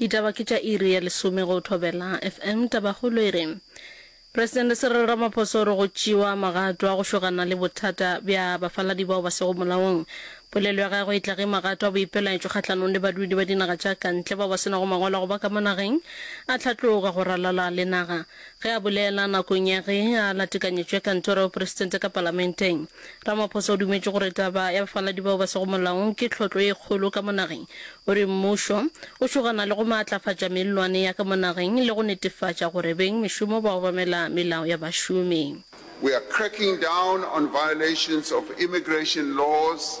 Ditaba ke tša iri ya lesome go Thobela FM. Tabakgolo e re, Presidente Cyril Ramaphosa o re go tšewa magato a go šogana le bothata bja bafaladi bao ba sego molaong. Polelo ya gagwe e tla ge magato a boipelaetšo kgahlanong le badudi ba dinaga tša kantle bao ba se nago mangwalo a go ba ka mo nageng a hlatloga go ralala le naga. Ge a bolela nakong ya ge a latekanyetšwe kantoro ya bopresidente ka palamenteng, Ramaphosa o dumetše gore taba ya bafaladi bao ba sego molaong ke tlhotlo e kgolo ka mo nageng. O re mmušo o šogana le go maatlafatša mellwane ya ka mo nageng le go netefatša gore beng mešomo ba obamela melao ya bašomi. We are cracking down on violations of immigration laws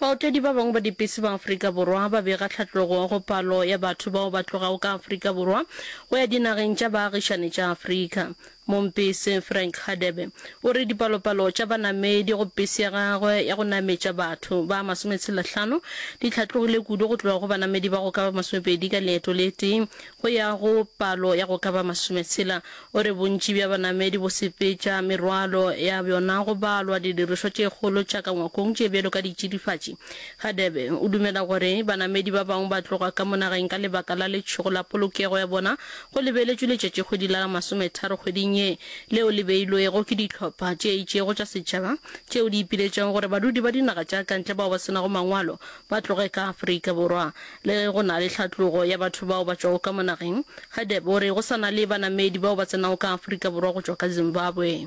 Baotledi ba bangwe ba dipese ba Afrika Borwa ba bega tlhatlogo go palo ya batho bao ba tlogago ka Afrika Borwa go ya dinageng tša baagišani tša Afrika. Mompese Frank Hadebe o re dipalopalo tša banamedi go pese ya gagwe ya go nametša batho ba masometshelahlano di hlatlogile kudu go tloga go banamedi ba go ka ba masomepedi ka leeto le tee go ya go palo ya go ka ba masometshela O re bontši bja banamedi bo sepetša merwalo ya bjona go balwa didirišwa tše kgolo tša ka ngwakong tše bjalo ka ditšidifatši. Hadebe o dumela gore banamedi ba bangwe ba tloga ka mo nageng ka lebaka la letšhogo la polokego ya bona go lebeletšwe letšatšikgwedi la la masometharo kgweding ye leo le beilwego ke dihlopha tše itšego tša setšhaba tšeo di ipiletšago gore badudi ba dinaga tša kantle bao ba se nago mangwalo ba tloge ka Afrika Borwa. Le ge go na le tlhatlogo ya batho bao ba tšwago ka mo nageng, Hadebe o re go sa na le banamedi bao ba tsenago ka Afrika Borwa go tšwa ka Zimbabwe.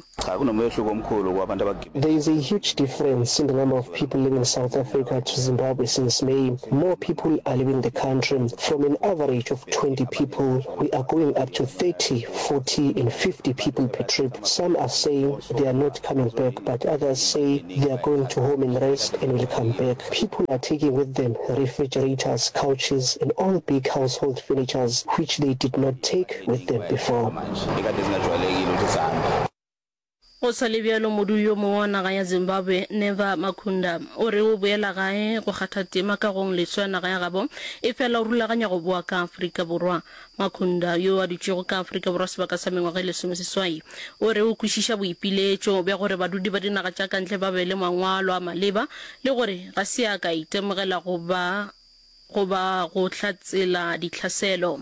There is a huge difference in the number of people leaving South Africa to Zimbabwe since May. More people are leaving the country. From an average of 20 people, we are going up to 30, 40 and 50 people per trip. Some are saying they are not coming back but others say they are going to home and rest and will come back. People are taking with them refrigerators, couches and all big household furnitures which they did not take with them before. Go sa le bjalo, modudi yo mongwe wa naga ya Zimbabwe, Never Makunda, o re o boela gae go kgatha tema ka gong leswa naga ya gabo e fela o rulaganya go boa ka Afrika Borwa. Makhunda, yo a dutšego ka Afrika Borwa sebaka sa mengwaga e lesomeseswai, o re o kwešiša boipiletšo bja gore badudi ba dinaga tša kantle ba be le mangwalo a maleba le gore ga se a ka itemogela go ba goba go hlatsela dihlaselo.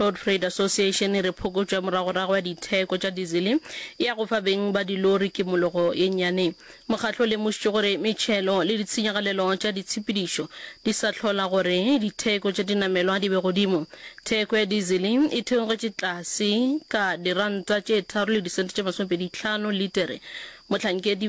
Road Freight Association e re phokotšo ya moragorago ya ditheko tša dizele e ya go fa beng ba dilori kimologo ye nnyane. Mokgatlo o lemošitše gore metšhelo le ditshenyagalelo tša ditshepedišo di sa hlola gore ditheko tša dinamelwa di be godimo. Theko ya dizele e theogetše tlase ka diranta tše tharo le disente tše masomepedi tlhano litere mohlankedi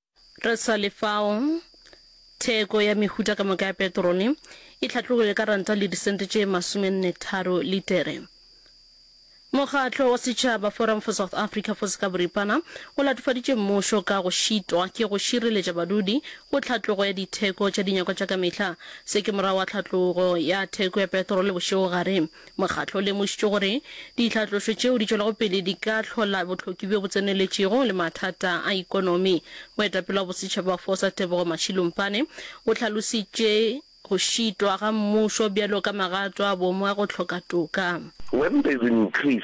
Re sa le fao, theko ya mehuta ka moka ya petrole e hlatlogilwe ka ranta le disente tše masomennetharo litere. Mokgatlo wa setšhaba Forum for South Africa for Sekaboripana o latofaditše mmušo ka go šitwa ke go šireletša badudi go tlhatlogo ya ditheko tša dinyakwa tša ka mehla. Se ke morago ga tlhatlogo ya theko ya petrole bošegogare Mokgatlo o lemošitše gore ditlhatlošo tšeo di tšwelago pele di ka hlola bohloki bjo bo tseneletšego le mathata a ikonomi. Moetapele wa bosetšhaba Fosa Tebogo Mashilompane o hlalositše go šitwa ga mmušo bjalo ka magato a bomo a go hloka toka. When there's an increase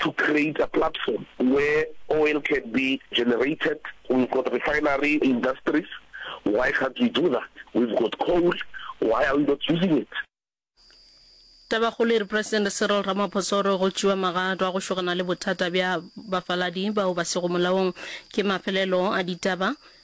to create a platform where oil can be generated, we've got refinery industries, why can't we do that, we've got coal, why are we not using it? Tabakgolo e re Presidente Cyril Ramaphosa o re go tšewa magato a go šogana le bothata bja bafaladi bao ba sego molaong ke mafelelo a ditaba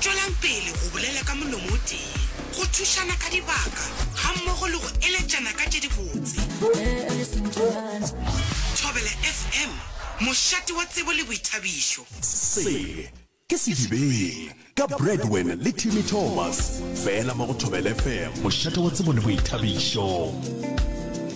Tšwelang pele go bolela ka molomo o tee, go thušana ka dibaka gammogo le go eletšana ka tše dibotse. Thobela FM, mošate wa tsebo le boithabišo. Se ke Sedibeng ka Bradwin le Timmy Thomas, fela mo go Thobela FM, mošate wa tsebo le boithabišo.